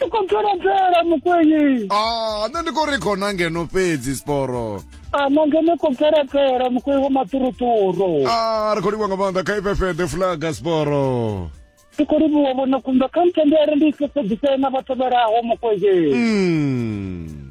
ndi khou bvelabvela mukwenyi a Ah, nṋe ndi khou ri khona ngeno fhedzi siporo a na ngeno khou bvelabvela mukwenyi wa maṱuruṱuru a Ah, ri khou livha nga maanḓa kha ifefede fulaga siporo ndi khou livhuwa vhona kumba kha ntendere ndi i fhefhedzisee na vha tevhelaho mukwenyi Mm.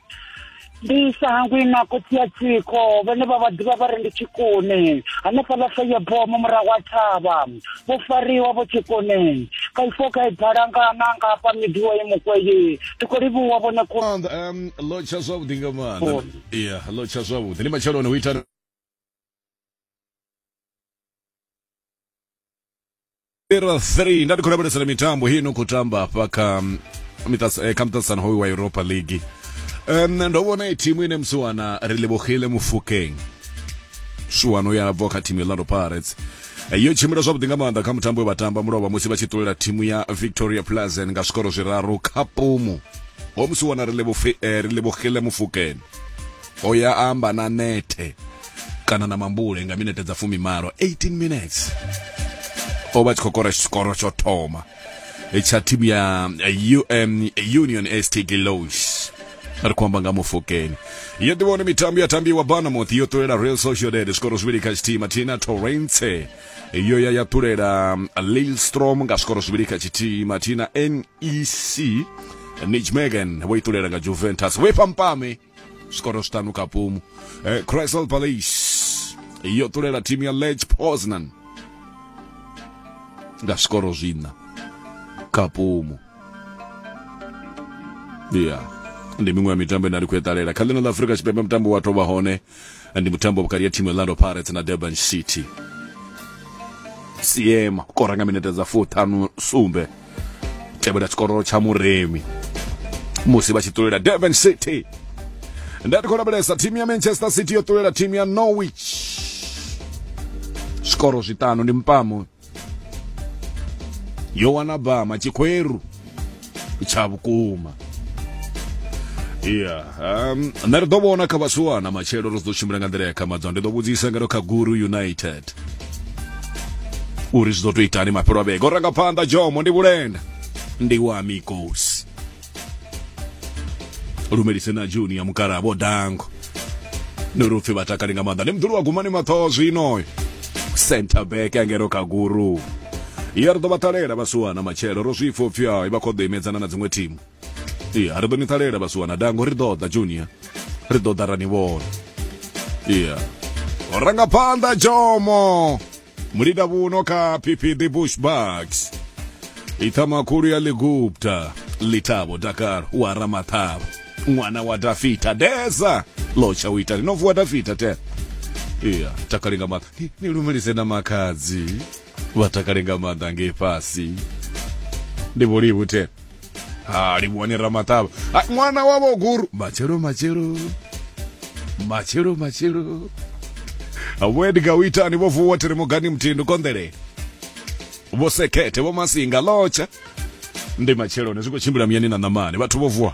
ndi sa hangwi na khotsi ya tsiko vhane vha vha ḓivha vha ri ndi tshikoni hanefhaḽa feyeboo mu murahu wa thavha vho fariwa vho tshikoni ka ifo ka ibala nga na nga hafha midiwa ye mukweyi ndi khou livhuwa vhone ku um lo tsha zwavhuḓi nga maanḓa oh. ya lo tsha zwavhuḓi ndi matsheloni hu ita Era 3 ndati khonabalisana mitambo hii no kutamba hafha kha mm, mitas- eh, kha muṱaṱisano hoyu wa europa league um, ndo vhona i thimu ine musi wana ri livhogile mufukeng shuwano ya bva kha thimu ya orlando pirates Eh, yo tshimbila zwavhuḓi nga maanḓa kha mutambo we vha tamba mulovha musi vha tshi ṱulela thimu ya victoria plazen nga zwikoro zwiraru kha pumu ho musi wana ri livhofi- eh, ri livhogile mufukeng o ya amba na nete kana na mambule nga minete dza fumi malo 18 minutes o vha tshi khou kora tshikoro tsho thoma tsha thimu ya um, union st gilos ri khou amba nga mufokeni yo ḓivhone mitambo ya tambiwa banamouth yo ṱulela real sociedad zwikoro zwivhili kha tshithihi mathina torrence yo ya ya ṱulela lilstrom nga zwikoro zwivhili kha tshithihi mathina ec nijmegen vho itulela nga juventus vho ifha mpame zwikoro zwiṱanu kha pumu eh, crystal palace yo tulela thimu ya lech poznan nga zwikoro zwiṋa kha pumu ya ndi miṅwe ya mitambo ine a ri khou eṱalela kha ḽino ḽa afurika tshipembe mutambo wa tovha hone ndi mutambo vhukati ya thimu orlando pirates na durban city siema u kora nga minete dza fuṱhanu sumbe tevhela tshikororo tsha muremi musi vha tshi ṱulela durban city nda tikho lavhelesa thimu ya manchester city yo ṱulela thimu ya norwich zwikoro zwiṱanu ndi mpamo yo wana bama tshikhweru tsha vhukuma ya um, nṋe ri ḓo vhona kha vhasuwana matshelo ri ḓo tshimbila nga nḓila ya khamadzwa ndi ḓo vhudzisa ngeno kha guru united uri zwi ḓo to itani mafhelo a vhege o ranga phanḓa jomo ndi vhulenda ndi wa mikosi lumelise na junior mukala vho dango no ri upfi vha takali nga maanḓa ndi muḓulu wa gumani mathoho zwino center back angero kaguru ya ri ḓo vha ṱalela vhasiwana matshelo ro zwi pfa upfi hai vha khou ḓo imedzana na dziṅwe thimu iya ri ḓo ni ṱalela vhasiwana dango ri ḓo ḓa junior ri ḓo ḓa ra ni vhona iya rangaphanḓa jomo mulida vhuno kha pp the bushbacks ithama khulu ya ligupta litabo dakar wa ramathabo ṅwana wa dafita deza lotsha u ita lino vuwa dafita te iya takale nga maanḓa Ni- ni lumelise na makhadzi vha takale nga maanḓa ngei fhasi ndi vholivu te ha livhuwani ramaṱavha ha ṅwana wa vhoguru matshelo matshelo matshelo matshelo vho edga u itani vho vuwa thiri mugani muthindu konḓelele vho sekhethe vho masinga lotsha ndi matsheloni zwi khou tshimbila muyani na ṋamani vhathu vho vuwa